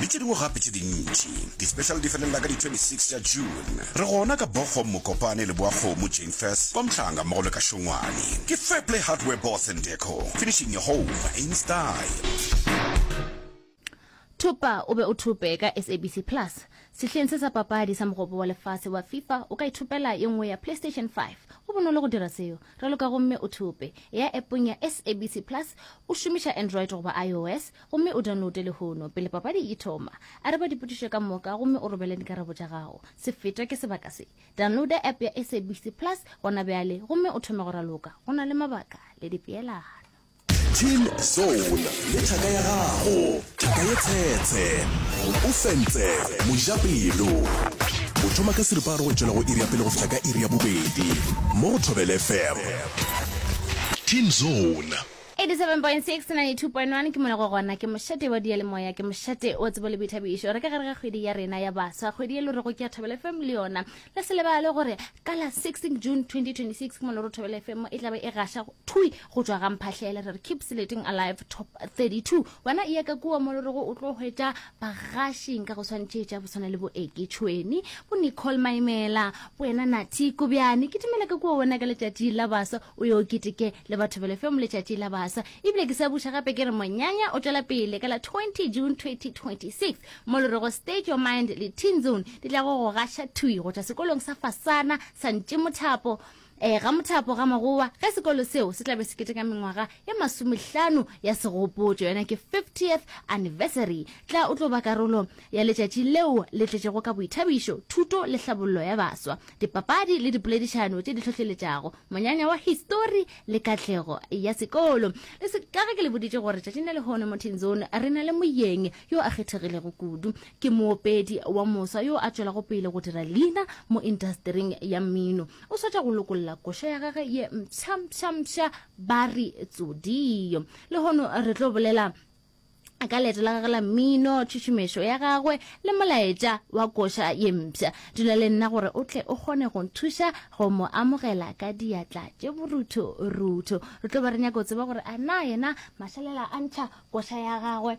le tše dingwe gape tše dintši. Di-special di felelela ka di-26 tša June. Re gona ka Bochum, Mokopane, Leboakgomo, Janeface, kwa Mhlanga mmogo le ka Šongwane. Ke Fairplay Hardware Boss and Deco, finishing your home in style. Thupa o be o thupe ka SABC Plus. Sehleng se sa papadi sa Mogopo wa Lefase wa Fifa, o ka ithupela ye nngwe ya Playstation 5. Go bonolo go dira seo. Raloka gomme o thupe. Eya appong ya SABC Plus, o šomiša Android goba iOS, Gomme o downloade lehono, pele papadi e thoma. Araba dipotšišo ka moka, gomme o robele dikarabo tša gago. Se fetwa ke sebaka se. Downloada app ya SABC Plus gona bjale, gomme o thome go raloka. Go na le mabaka le dipeelano. Team Zone le thaka ya gago, thaka ye tshetshe. O fentse mojapelo. O thoma ka seripa a re go tšwela go iri ya pele go fihla ka iri ya bobedi mo go Thobela FM. Team Zone. 87.6 92.1 ke mona go gona ke mošate wa diyalemoya ke mošate wa tsebo le boithabišo re ka gare ga kgwedi ya rena ya baswa kgwedi ye lo re go ke ya thobele fm le yona le se lebale gore ka la 16 june 2026 ke mona ro thobele fm e tlabe e gaša thui go tswa ga mphahlele re re keep selecting alive top 32 wena e ya ka kua mo lo re go o tlo hwetša bagashing ka go tshwanetše tša boswana le boeke tšhweni bo nicole maimela bo ena nathi kobjane ke dumela ka kua wena ka letšatši la basa o yo keteke le batho bele fe mo letšatši la basa ebile ke sa buša gape ke re monyanya o tšwela pele ka la 20 june 2026 mo le rego state your mind le teen zone di tla go go gaša thwi go tšwa sekolong sa fasana sa ntše mothapo Ee, ga mothapo ga magowa ge sekolo seo se tlabe se keteka mengwaga e masomehlano ya segopotšo yona ke 50th anniversary tla o tlo ba karolo ya letšatši leo le tletšego ka boithabišo thuto le hlabollo ya baswa dipapadi le dipoledišano tše di hlohleletšago monyanya wa histori le katlego ya sekolo le se ka ge ke le boditše gore tšatšing le lehono mo tenzone re na le moyeng yo a kgethegilego kudu ke moopedi wa mosa yo a tšwelago pele go dira leina mo intasetering ya mmino o swetša go lokolla koša ya gage ye mpšhampšhampša ba re tsodio lehono re tlo bolela ka leeto la gage la mmino tšhušumešo ya gagwe le molaetša wa koša ye mpša dula le nna gore o tle o kgone go nthuša go mo amogela ka diatla tše borutho rutho re tlo ba re nyako tseba gore a na yena mašalela a ntšha koša ya gagwe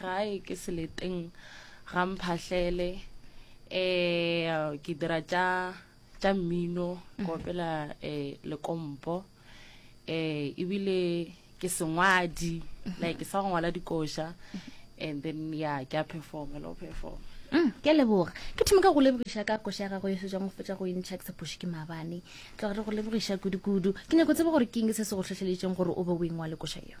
gae ke seleteng ga mphahlele um ke dira tša tša mmino ke opela um lekompo um ebile ke sengwadi like ke sa go ngwala dikoša and then ya ke a performa le go performa Mm, ke a leboga ke thome ka go lebogiša ka koša ya gago e setswang go fetsa go entšha ke sephoši ke mabane tloga re go lebogiša kudu-kudu ke nyako tsebe gore ke eng se se go tlhotlheleditseng gore o be o engwale koša yeo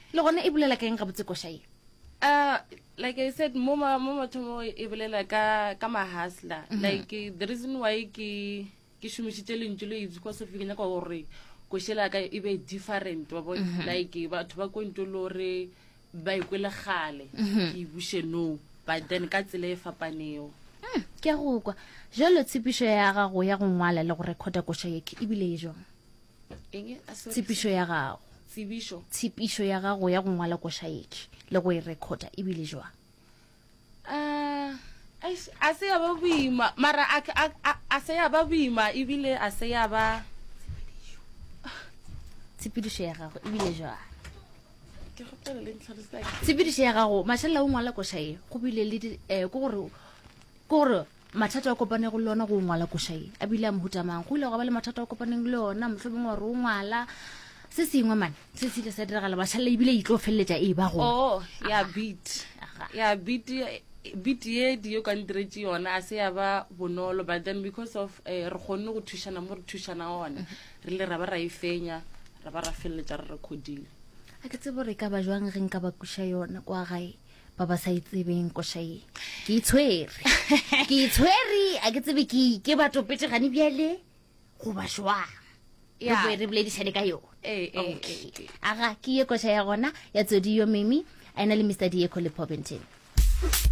Le gona e bolela ka eng gabotse koša ye? Uh, like I said, mo ma mo mathomo e bolela ka ka mahasla. Mm -hmm. Like the reason why ke ke šomišitše lentšu le itse because of ke nyaka gore košela ka e be different wa bo mm -hmm. like batho ba kwentšo le gore ba ikwe le gale mm -hmm. ke buše no but then ka tsela e fapanego mm, ke ya go kwa jalo tshepišo ya gago ya go ngwala le go recorda koša yeke ebile e jong tshepišo ya gago tshepišo ya gago ya go ngwala košaeki le go e recorda e bile jwa ah, a se ya ba boima mara a se ya ba boima ebile a se ya ba tshepedišo ya gago ebile jwa tshepedišo ya gago mašalela o ngwala košae go bile le eh, ke gore mathata a kopane go le ona go ngwala koša ye a bile a mohuta mang go ile go ba le mathata a kopaneng le ona motlho bongwe gore o ngwala se sengwe mane se se ile sa diragala bašhalela ebile e tlo feleletša e ba go oo oh, ya beat ya beat beat ye di yo ka ntiretše yona a se ya ba bonolo but then because of eh, re kgonne go thušana mo re thušana gone mm-hmm. re le ra ba ra e fenya ra ba ra feleletša re recordile a ke tsebo re ka ba jwang re nka ba kuša yona kwa gae ba ba sa itsebeng koša ye ke itshwere ke itshwere a ke tsebe ke ke batopetse gane bjale goba jwang Yeah. re boledišane ka yone Eh, eh, okay eh, eh. aga ke ye koša ya gona ya tsodi yo mimi a ena le mr dieko le pobenteng